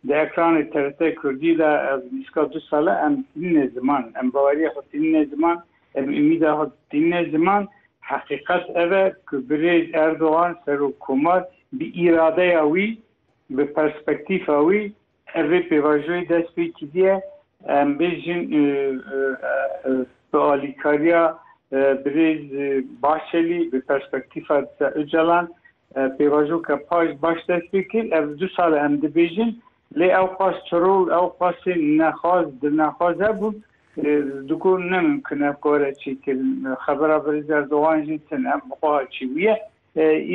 Di ekranê TRT Kurdî de ez nîzka du sal e em tînîne ziman, em baweriya xwe tînîne ziman, em umîda xwe tînîne ziman. Heqîqet ev e ku birêz Erdogan Serokkomar bi îradeya wî, bi perspektîfa wî ev vê pêvajoyê dest pê kiriye. Em bêjin bi alîkariya birêz Bahçelî, bi perspektîfa Disa Ocalan Pêvajoka paş baş dest pê kir. Ev du sal e em dibêjin. Lê ew qas çirol, ew qasê nexwaz, dilnexwaz hebûn. Di gor ne mimkin e kare çêkirin. Xebera Birêz Erdogan jî tin e, bi xwe ha çi bûye.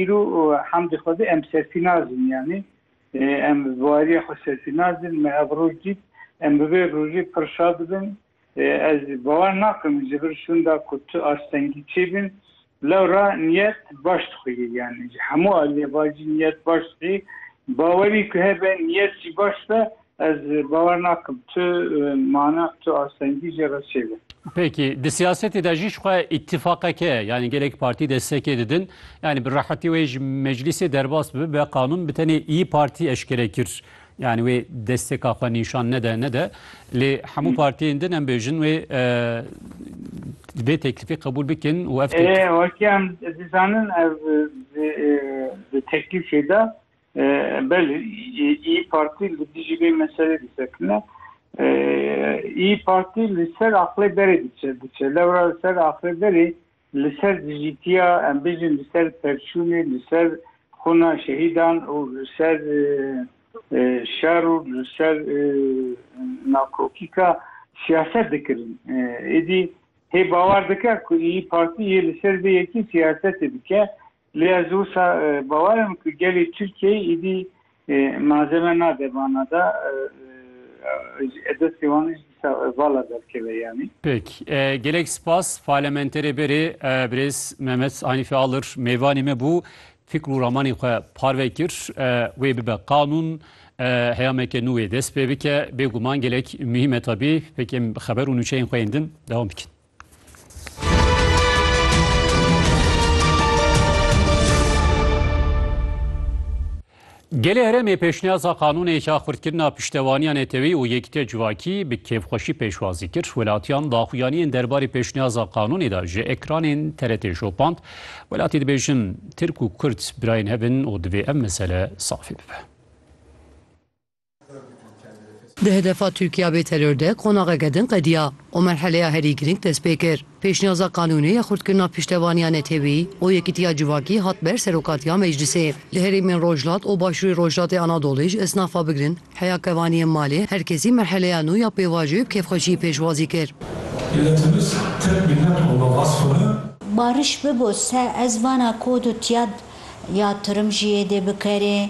Îro hemdî xwedî em serfî nazin yanî. Em bi wariya xwe serfî nazin. Me ev roj dît. Em bi vê rojê pir şa dibin. Ez bawer nakim ji vir şûnda ku tu astengî çêbin lewra niyet baş dixwîyî yanî ji hemû aliyê bacî niyet baş dixwîyî bawerî ku hebe niyet jî baş be ez bawer nakim tu mana tu astengî jê re çêbin. Peki di siyasetê de jî ji xwe îtîfaqeke yanî gelek partî destekê didin yanî bi rehetî wê ji meclîsê derbas bibe qanûn bi tenê îyi partî eşkere kir Yanî wê destêka xwe nîşan nede nede lê hemû partiyên din em bêjin wê vê teklîfê qebûl bikin û ev wakiyan dizanin ev di teklîfê de belê î partî li dijî vê meselê disekine î partî li ser aqlê berê diçe diçe lewra li ser aqlê berê Li ser dijîtiya, em bijîn li ser perçûnê, li ser xwina şehîdan û li ser şer û li ser nakokîka siyaset dikirin. Êdî hê bawer dike ku Îyi Partî yê li ser vê yekî siyasetê dike Lê ez wisa bawer im ku gelê Tirkiyeyê êdî malzeme nade vana de û destê wan jî dîsa vala derkeve yanî. Pêk. Gelek spas Parlementerê berê Birêz Mehmet Hanîfê Alir mêvanê me bû. Fikr û ramanên xwe parve kir. Wê bibe qanûn. Heyameke nû wê dest pê bike. Bêguman gelek muhîm e tabî. Pêk em xeber û nûçeyên xwe yên din dewam dikin. Gelê heremê pêşniyaza qanûnêka xurtkirina piştevaniya netewî û yekîtiya civakî bi kêfxweşî pêşwazî kir. Welatiyan daxuyaniyên derbarê pêşniyaza qanûnê de ji ekranên TRT şopand. Welatî dibêjin Tirk û Kurd birayên hev in û divê ev mesele safî bibe. Di hedefa Tirkiya bê teror de qonaxeke din qediya û merheleya herî girîng dest pê kir. Pêşniyaza qanûnê ya xurtkirina piştevaniya netewî û yekîtiya civakî hat ber Serokatiya Meclisê. Li herêmên Rojhilat û Başûrê Rojhilatê Anadolê ji esnafa bigirin heya kevaniyên malê her kesî merheleya nû ya pêvajoyê bi kêfxweşiyê pêşwazî kir. Bariş bibo se ez vana kod û tiyad ya tirim jiyê dê bikerê.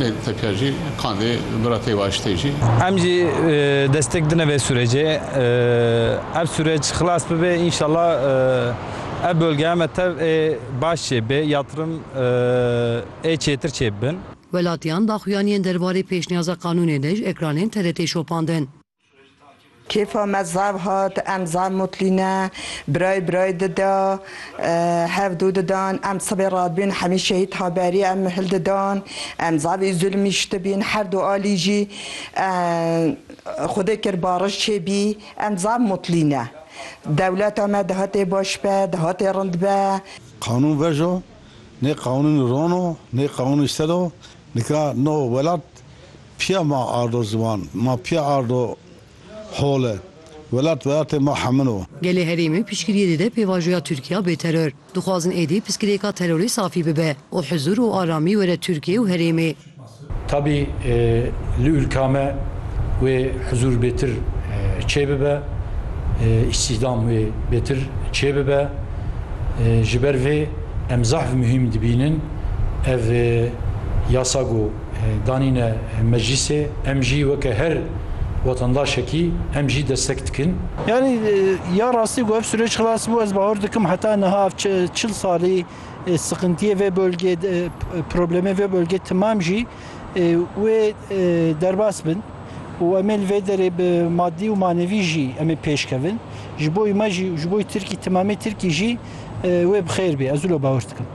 Lê teke jî qandê bira têwaştê jî. Em jî destek dine vê sûrecê. Ev sûreç xilas bibe înşallah ev bölgeya me tev ê baş çêbê, yatırım ê çêtir çêbibin. Welatiyan daxuyaniyên derbarê pêşniyaza qanûnê de ji ekranên TRT'ê şopandin. Kêfa me zav hat, em zav mutlî ne, birayê birayê dida, hev dû didan, em sibê radibîn hemî şehîd haberî em mihil didan, em zavî zulmî şitibîn, her du alî jî xwedê kir bariş çêbî, em zav mutlî ne. Dewleta me dihatê baş be, dihatê rind be. Qanûn vaj o, nê qanûn ron o, nê qanûn îşter o, nika no welat Piya ma ardo ziwan, ma piya ardo hol e. Welat welatê ma hemin o. Gelê herêmê piştgiriyê dide pêvajoya Tirkiya bê teror. Dixwazin êdî piskirêka terorê safî bibe û huzur û aramî were Tirkiye û herêmê. Tabî li ûlka me wê huzur bêtir çêbibe, îstîhdam wê bêtir çêbibe. Ji ber vê em zehf muhîm dibînin ev yasa ku, danîne meclîsê, em jî weke her wetandaşekî em jî destek dikin. Yanî ya rastî ku ev sûreç xilas bû, ez bawer dikim heta niha ev çil salî siqintiyê vê bölgê, problemê vê bölgê timam jî wê derbas bin û em ê li vê derê bi madî û manevî jî em ê pêş kevin. Ji bo wî me jî û ji bo Tirkî timamê Tirkî jî wê bi xêr bê, ez wilo bawer dikim.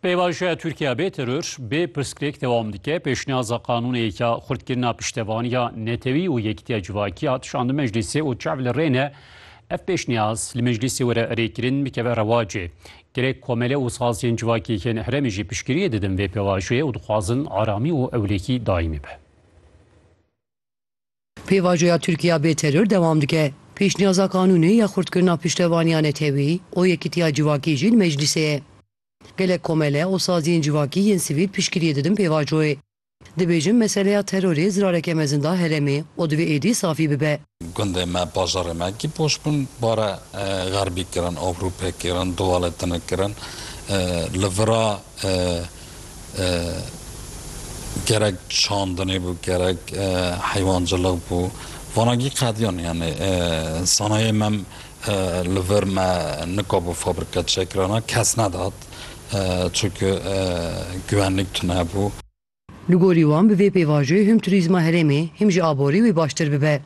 Pêvajoya Tirkiya bê teror, bê pirsgirêk dewam dike. Pêşniyaza qanûneyeke xurtkirina piştevaniya netewî û yekîtiya civakî hat şandin meclîsê û çav li rê ne ev pêşniyaz li meclîsê were erêkirin bikeve rewacê. Gerek komele û saziyên civakî yên herêmê jî piştgiriyê didin vê pêvajoyê û dixwazin aramî û ewlehî daîmî be. Pêvajoya Tirkiya bê teror dewam dike. Pêşniyaza qanûnê ya xurtkirina piştevaniya netewî û yekitiya civakî jî li meclîsê ye. Gelek komele û saziyên civakî yên sivîl piştgiriyê didin pêvajoyê. Dibêjin meseleya terorê zirareke mezin da herêmê û divê êdî safî bibe. Gundê me, bajarê me kî poş bûn bare xerbî kirin, abrû pêk kirin, dowaletinê kirin. Li vira. gerek çandinê bû gerek heywancilik bû vanagî qediyan yanê sanayê me li vir me nikabû fabrîka çêkirana kes nedat çunku guwenlik tune bû. Li gorî wan bi vê pêvajê him turîzma herêmê him jî aborî wê baştir bibe.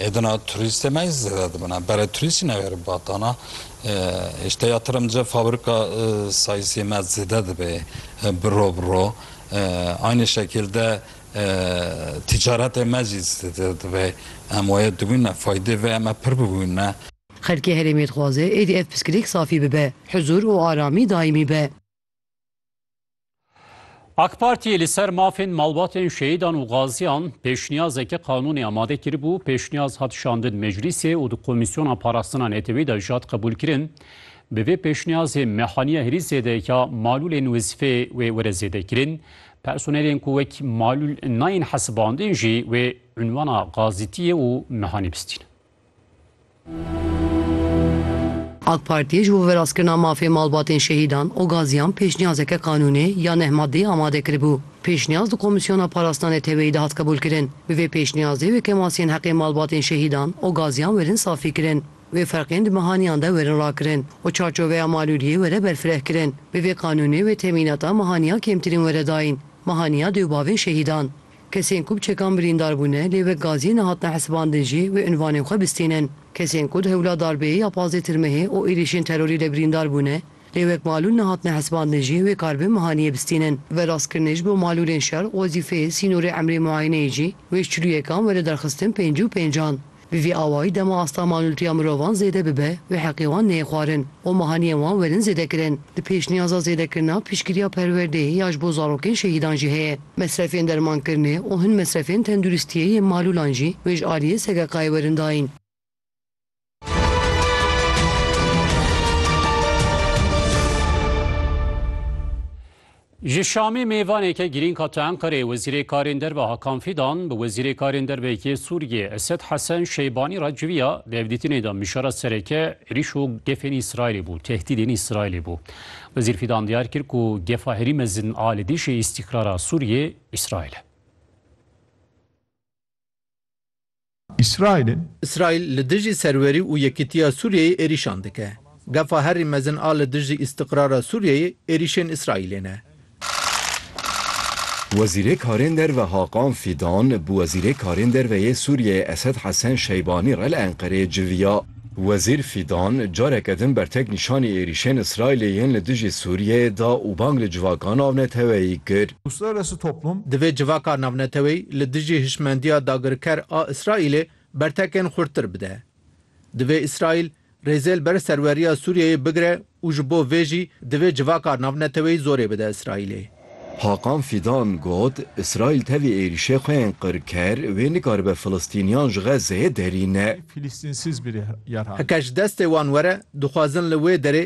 Êdina turîstê me zêde dibin e. Berê turîstî newêrin batana. Hêşte ya tirim dice fabrika sayîsê me zêde dibe bi ro bi ro. Aynê şekil de tîcaretê me jî zêde dibe. Em wayê dibîn ne, faydê vê eme pir bibîn ne. Xelkê herêmê dixwaze êdî ev piskilêk safî bibe, huzur û aramî daîmî be. AK Partiyê li ser mafên malbatên şehîdan û gaziyan pêşniyazeke qanûnê amade kiribû, pêşniyaz hat şandin meclîsê û di komîsyona parastina netewî de jî hat qebûlkirin. Bi vê pêşniyazê mehaniya herî zêde ya malûlên wezîfeyê wê were zêdekirin. Personelên ku wek malûl nayên hesibandin jî wê unwana gazîtiyê û mehanî bistînin. AK Partiyê ji bo veraskirina mafê malbatên şehîdan û gaziyan pêşniyazeke qanûnê ya neh maddeyî amade kiribû. Pêşniyaz di Komîsyona Parastina Neteweyî de hat qebûlkirin. Bi vê pêşniyazê wê kemasiyên heqê malbatên şehîdan û gaziyan werin safîkirin, wê ferqên di mehaniyan de werin rakirin û çarçoveya malûliyê were berfirehkirin. Bi vê qanûnê wê temînata mehaniya kêmtirîn were dayîn, mehaniya dêw bavên şehîdan. Kesên ku bi çekan birîndar bûne lê wek gaziyê nehatine hesibandin jî wê unvanên xwe bistînin. Kesên ku di hewla darbeyê ya pazdeh tirmehê û êrîşên terorî de birîndar bûne lê wek malûl nehatine hesibandin jî wê karbê mihaniyê bistînin. Ve rastkirinê ji bo malûlên şer, wezîfeyê, sînorê emrê muayeneyê jî wê ji çilûyekan were derxistin pêncî û pêncan. Bi vî awayî dema asta malûltiya mirovan zêde bibe û heqê wan neyê xwarin û mehaniyên wan werin zêdekirin. Di pêşniyaza zêdekirina piştgiriya perwerdeyê ya ji bo zarokên şehîdan jî heye. Mesrefên dermankirinê û hin mesrefên tenduristiyê yên malûlan jî wê ji aliyê SGK'ê werin dayîn. Ji Şamê mêvaneke girîng hate Enqereyê, Wezîrê Karên Derve Hakan Fîdan bi Wezîrê Karên Derve yê Sûriyê Esed Hesen Şeybanî re civiya, di hevdîtinê de mijara sereke êrîş û gefên Îsraîlê bû, tehdîdên Îsraîlê bû. Wezîr Fîdan diyar kir ku gefa herî mezin a li dijî îstîkrara Sûriyê Îsraîl e. Îsraîlê. Îsraîl li dijî serwerî û yekîtiya Sûriyeyê êrîşan dike. Gefa herî mezin a li dijî îstiqrara Sûriyeyê êrîşên Îsraîlê ne. Wezîrê Karên Derve Hakan Fîdan bi Wezîrê Karên Derve yê Sûriyeyê Esed Hesen Şeybanî re li Enqereyê civiya. Wezîr Fîdan careke din bertek nîşanî êrîşên Îsraîlê yên li dijî Sûriyeyê da û bang li civaka navneteweyî kir. Divê civaka navneteweyî li dijî hişmendiya dagirker a Îsraîlê bertekên xurttir bide. Divê Îsraîl rêzê li ber serweriya Sûriyeyê bigire û ji bo vê jî divê civaka navneteweyî zorê bide Îsraîlê. Hakan Fîdan got, Îsraîl tevî êrîşê xwe yên qirker wê nikaribe Filistîniyan ji Xezzeyê derîne. Heke ji destê wan were, dixwazin li wê derê